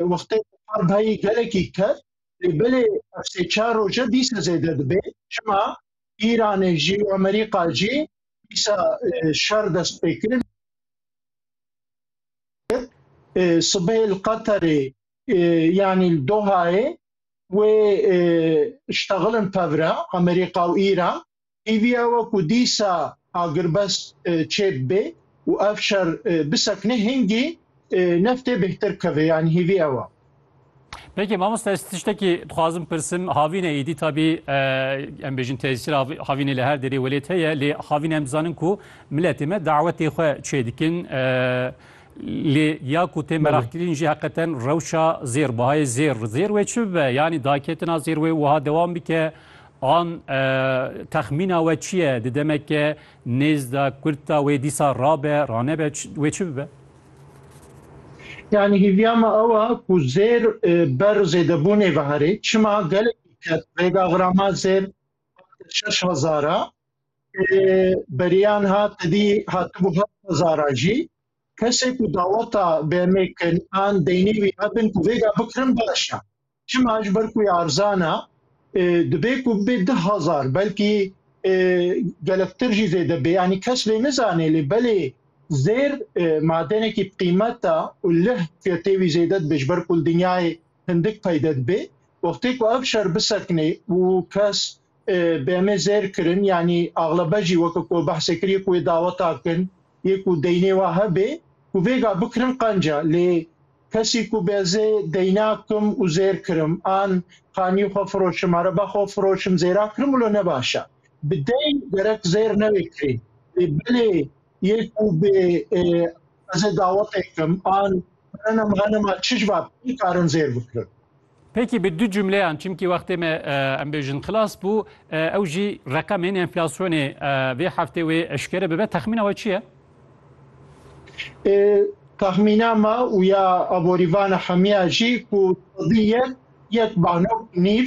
Wextê ku par dayî gelekî ket lê belê ev sê çar roje dîsa zêde dibê. Çima? Îranê jî û Amerîka jî dîsa şer dest pê kirin. Sibê li Qeterê yanî li Dohayê wê ştexilin tevre Amerîka û Îran. Îvîya we ku dîsa agirbest çêb bê û ev şer bisekine hingî neftê bêhtir keve yanî hîvî ew a. Peki mamosta ez tiştekî dixwazim pirsim havîne êdî tabî em bêjin tesîr havînê li her derê welêt heye lê havîne em dizanin ku miletê me dawetê xwe çê dikin lê ya ku tê meraqkirîn jî heqeten rewşa zêr bihayê zêr zêr wê çi bibe yanî daketina zêr wê wiha dewam bike An texmîna we çi ye? Di demeke nêz de kurt de wê dîsa rabe, ranebe wê çi bibe? Yani hîviya me ew e ku zêr ber zêdebûnê veherê. Çima gelekî kes rêga xirama zêr şeş hezar a, beriyan ha tedî hatibû heft hezar a jî. Kesê ku daweta BM'ê kin an deynê wî hebin ku rêga bikirin baş e. Çima ji ber ku wê erzana dibê ku bibê di hezar belkî gelektir jî zêde bê yanî kes lê nizanê lê belê zêr madenekî bi qîmeta û lih fiyetê wî zêde dibe ji ber ku li dinyayê hindik peyde dibe. Wextê ku ev şer bisekine û kes bi em ê zêr kirin yanî axlebe jî weke ku behsê kiriye ku wê daweta kin yê ku deynê wa hebe ku vêga bikirin qenca lê kesî ku bi ez ê deyna kim û zêr kirim an qanî xwe firoşim areba xwe firoşim zêra kirim wilo ne baş e bi deyn gerek zêr newê kirîn lê belê Yê ku bê ez ê dawetê kim an berena merenema çi ji va pê karin zêr bikirin. Peki bi du cümleyan çimkî wextê me em bêjin xilas bû ew jî reqemên enflasyonê vê heftê wê eşkere bibe texmîna we çi ye? Texmîna me û ya aborîvana hemiya jî ku yek yek banok nîv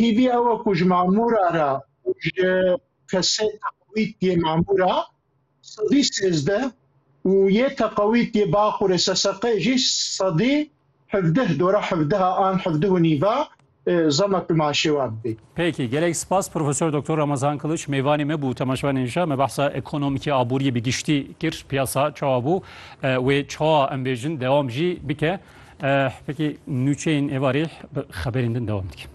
Hîvî ew e ku ji mamûra re û ji kesê teqewît yê mamûra sedî sêzdeh û yê teqewît yê Baqûrê SSQ'ê jî sedî hevdeh dora hevdeha an hevdeh û nîva zama pimanşêwa bibê. Peki, gelek spas Profesor Doktor Ramazan Kılıç mêvanê me bû temaşevan inşa me behsa ekonomikê aboriyê bi giştî kir piyasa çawa bû wê çawa em bêjin dewam jî bike. Peki nûçeyên êvarê bi xeberên din devam dikin.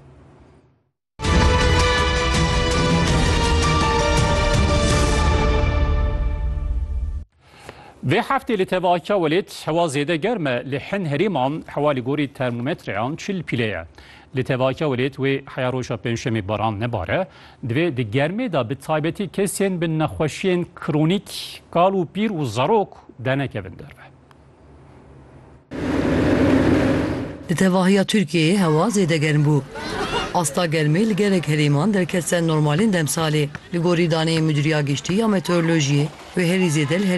Vê heftê li tevakiya welêt hewa zêde germ e li hin herêman hewa li gorî termometreyan çil pîlê ye. Li tevakiya welêt wê heya roja pêncşemê baran nebare, divê di germê de bi taybetî kesên bi nexweşiyên kronîk, kal û pîr û zarok dernekevin derve. Di tevahiya Tirkiyeyê hewa zêde germ bû. Asta germê li gelek herêman derket ser normalên demsalê. Li gorî daneyên Mudîriya Giştî ya Meteorolojiyê wê herî zêde li herêma